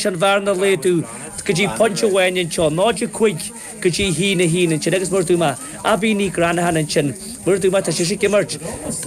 an bhearna a laghdú go dtí pointe amháin anseo, 0.5 go dtí a haon a haon ansin agus mar a dúirt mé Abaí Nig Reannacháin ansin. Mar a dúirt mé, tá sise ag imirt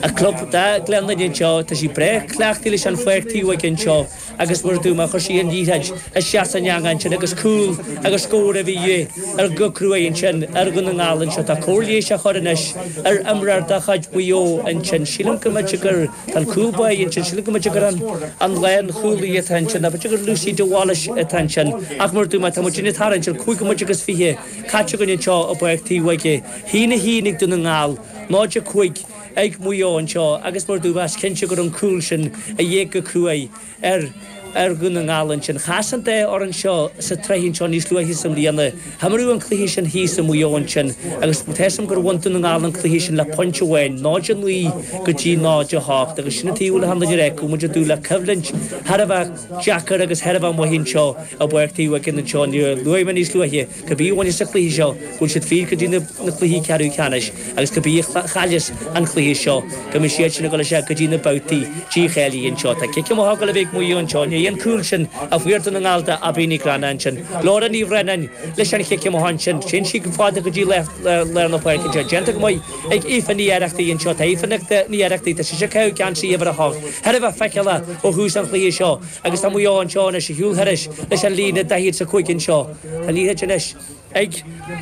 a club do Ghleann Fhinne anseo, tá sí breá cleachtaithe leis an Pháirc Taobhóige anseo agus mar a dúirt mé, chuir sí an liathróid isteach san eangach ansin agus cúl agus scór a bhí de dhíth orthu go cruaidh ansin ar Dhún na nGall anseo. Tá cóir leighis á cur anois ar imreoir de chuid Mhaigh Eo ansin, sílim go mb'fhéidir gur. Tá an cúl báire ansin, sílim go mb'fhéidir gur an lánchúlaí atá ansin, nó b'fhéidir gur Lucy de Bhailís atá ansin, ach mar a dúirt mé, tá muidinne ag tarraingt ar chúig nóiméad agus fiche caite againn anseo i bPáirc Taobhóige. A haon a haon ag Dún na nGall, 0-5 ag Maigh Eo anseo agus mar a dúirt mé, is cinnte go raibh an cúl sin de dhíth go cruaidh ar Dhún na nGall ansin. Chas an dá fhoireann seo sa tsraith anseo níos luaithe sa mbliain. Himríodh an cluiche sin thíos i Maigh Eo ansin agus tá fhios agam gur bhain Dún na nGall an cluiche sin le pointe amháin, 0 9 go dtí 0 8, agus sin an taobh eile thar Loinne Riach, muid ag dúil le coimhlint thar a bheith deacair agus thar a bheith maith anseo i bPáirc Taobhóige anseo. Níor luaigh mé níos luaithe. Cibé a bhaineas an cluiche seo, go bhfuil siad fríd go dtí na cluichí ceathrú ceannais agus cibé a chailleas an cluiche seo, go mbeidh siad sin ag dul síos go dtí na babhtaí dícháilithe anseo. Tá cic amach ag dul a bheith ag Maigh Eo anseo. I ndiaidh an cúl sin a fuair Dún na nGall de Aibí Nig Reannacháin ansin. Laura Ní Bhraonáin leis an chic amach ansin. Téann sí go fada go dtí lár na páirce anseo. Déanta go maith ag Aoife Ní Oireachtaigh anseo. Tá Aoife Ní Oireachtaigh, tá sise ag caitheamh geansaí uimhir a hocht, thar a bheith feiceálach ó thús an chluiche seo agus tá Maigh Eo anseo anois ag siúl thairis leis an líne 45 anseo. Tá an liathróid anois ag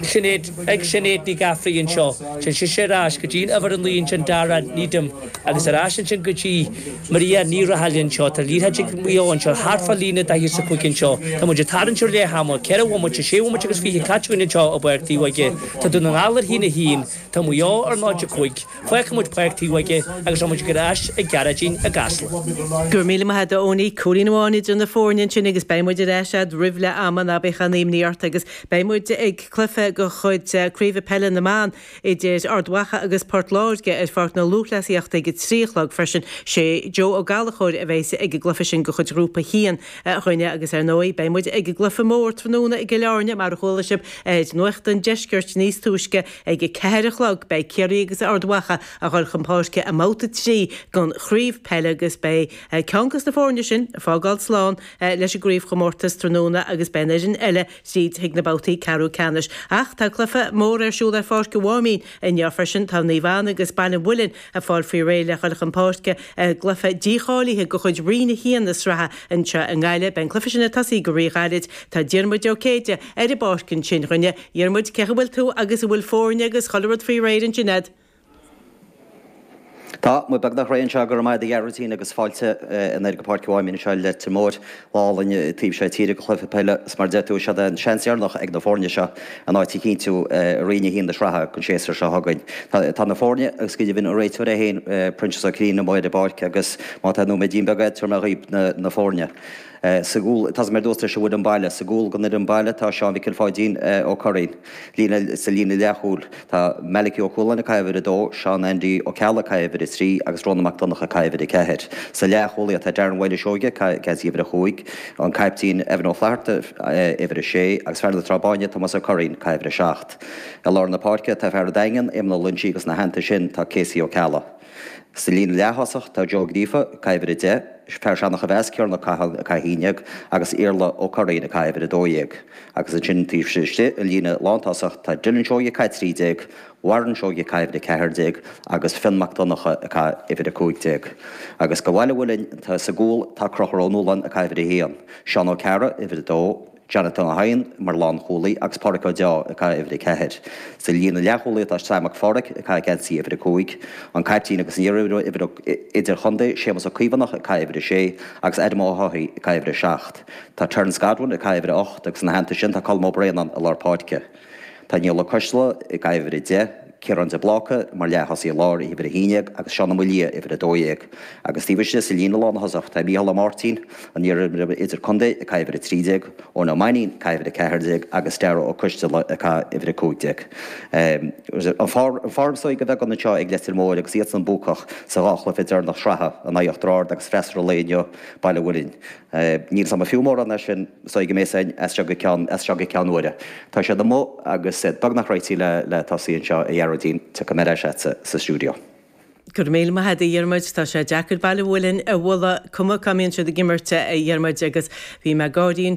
Sinéad, ag Sinéad Ní Ghafraidh anseo. Téann sise ar ais go dtí'n uimhir a naoi ansin, Dara Needham, agus ar ais ansin go dtí Maria Ní Rathaille anseo. Tá an liathróid ag Maigh Eo anseo, thart fán líne daichead is a cúig anseo. Tá muid ag tarraingt ar leath ama, ceithre bhomaite, sé bhomaite agus fiche caite againn anseo i bPáirc Taobhóige. Tá Dún na nGall ar a haon a haon, tá Maigh Eo ar 0, 5. Fágfaidh muid Páirc Taobhóige agus rachaidh muid ar ais chuig Gearóidín i gCasla. Go raibh míle maith agat a Eoiní, cúilín amháin idir na foirne ansin agus beidh muid ar ais agat roimh leath ama, ná bíodh aon imní ort, agus beidh muid ag cluiche de chuid Craoibhe Peile na mBan idir Ard Mhacha agus Port Láirge ar Pháirc na Lúthchleasaíochta ag a trí a chlog freisin. Sé Joe Ó Gallachóir a bheas ag an gcluiche sin de chuid Ghrúpa a hAon dhúinne agus ar ndóigh beidh muid ag an gcluiche mór tráthnóna i gCill Áirne mar a chuala sibh ar Nuacht an Deiscirt níos túisce Ag a ceathair a chlog, beidh Ciarraí agus Ard Mhacha ag dul chun páirce i mbabhta trí den chraobh peile agus beidh ceann des na foirne sin ag fágáil slán leis an gcraobhchomórtas tráthnóna agus beidh an fhoireann eile tríd chuig na babhtaí ceathrú ceannais. Ach tá cluiche mór ar siúl ar Pháirc an Mháimín inniu freisin. Tá Naomh Anna agus Baile an Mhuilinn ag fáil faoi réir le dhul chun páirce i gcluiche dícháilithe de chuid Roinn 1 na sraithe anseo i nGaillimh. Beidh an cluiche sin ag tosaí go rí-ghairid. Tá Diarmuid Ó Céide ar an bpáirc ansin dhúinne Dhiarmuid, cén chaoi a bhfuil tú agus an bhfuil foirne agus chuile rud faoi réir ansin a'd? Tá muid beagnach réidh anseo, go raibh maith a'd a Ghearóidín agus fáilte anoir go Páirc an Mháimín anseo i Leitir Móir. Lá álainn taobh seo tíre go cluiche peile agus mar a deir tú, siod é an seans deireanach ag na foirne seo a n-áit a chinntiú i roinn a haon na sraithe an séasúr seo chugainn. Tá na foirne agus go deimhin an réiteoir é féin, Proinsias Ó Cinnín, amuigh ar an bpáirc agus má tá nóiméidín beag a'd, tabharfaidh mé dhaoib na foirne. Sa gcúl, tá mé ag dul ag tosaí leis an bhfoireann baile. Sa gcúl den fhoireann baile tá Seán Mhicil Pháidín Ó Curraoin. Sa líne leathchúil tá Malachy Ó Cualáin ag caitheamh uimhir a dó, Seán Andy Ó Ceallaigh ag caitheamh uimhir a trí agus Rónán Mac Donnacha ag caitheamh uimhir a ceathair. Sa leathchúlaithe tá Darren Mhaoil Ó Seoighe ag caitheamh uimhir a cúig, an caiptín Evan Ó Flatharta uimhir a sé agus fear na Trá Báine Tomás Ó Curraoin ag caitheamh uimhir a seacht. I lár na páirce tá fear an Daingin, Éamonn Ó Loinsigh agus ina theannta sin tá Casey Ó Ceallaigh. Sa líne leath-thosach tá Joe Ó Gríofa, ag caitheamh uimhir 10, fear Seanachomheas Ciaran Ó Catháin, ag caitheamh 11, agus Iarla Ó Curraoin, ag caitheamh uimhir 12, agus ansin taobh istigh an líne lántosach tá Dylan Seoighe, ag caitheamh 13, Warren Seoighe, ag caitheamh uimhir 14, agus Fionn Mac Donnacha, ag caitheamh uimhir 15. Agus go Bhaile an Mhuilinn, sa gcúl tá Conchúr Ó Nualláin, ag caitheamh uimhir 1, Seán Ó Cearra, uimhir 2, Jonathan Ó hEidhin mar lánchúlaí agus Pádraig Ó Deá ag caitheamh uimhir a ceathair. Sa líne leathchúlaí tá Seán Mac Fádhraic ag caitheamh geansaí uimhir a cúig, an caiptín agus an iarimreoir idir-chontae, Séamus Ó Caomhánach ag caitheamh uimhir a sé agus Adam Ó hEochaidh ag caitheamh uimhir a seacht. Tá Terence Godwin ag caitheamh uimhir a hocht agus ina theannta sin tá Colm Ó Braonáin i lár páirce. Tá Niall Ó Coisdeala ag caitheamh uimhir a deich, Ciarán de Bláca mar leath-thosaí i lár uimhir a haon déag agus Seán Ó Maolaodha uimhir a dó dhéag. Agus taobh istigh sa líne lánthosach tá Micheál Ó Máirtín, an iar-imreoir idir-chontae, ag caitheamh uimhir a trí déag, Eoin Ó Mainnín ag caitheamh uimhir a ceathair déag agus Darragh Ó Coisdeala ag caitheamh uimhir a cúig déag. An form is dóigh a bheith anseo ag Leitir Móir agus iadsan buacach sa dhá chluiche deireanach sraithe in aghaidh Uachtar Ard agus freasúra an lae inniu, Baile an Mhuilinn. Níl a fhios agam an fiú mórán é sin, is dóigh go mbeidh a fhios againn as seo go ceann, as seo go ceann uaire. Tá siad amuigh agus beagnach réití le, le tosaí anseo a Ghearóidín, tiocfaidh mé ar ais agatsa sa stiúideo. Go raibh míle maith agat a Dhiarmuid, tá sé deacair Baile an Mhuilinn a bhualadh, cuma cá mbíonn siad ag imirt a Dhiarmuid, agus bhí mé ag gáirí anseo.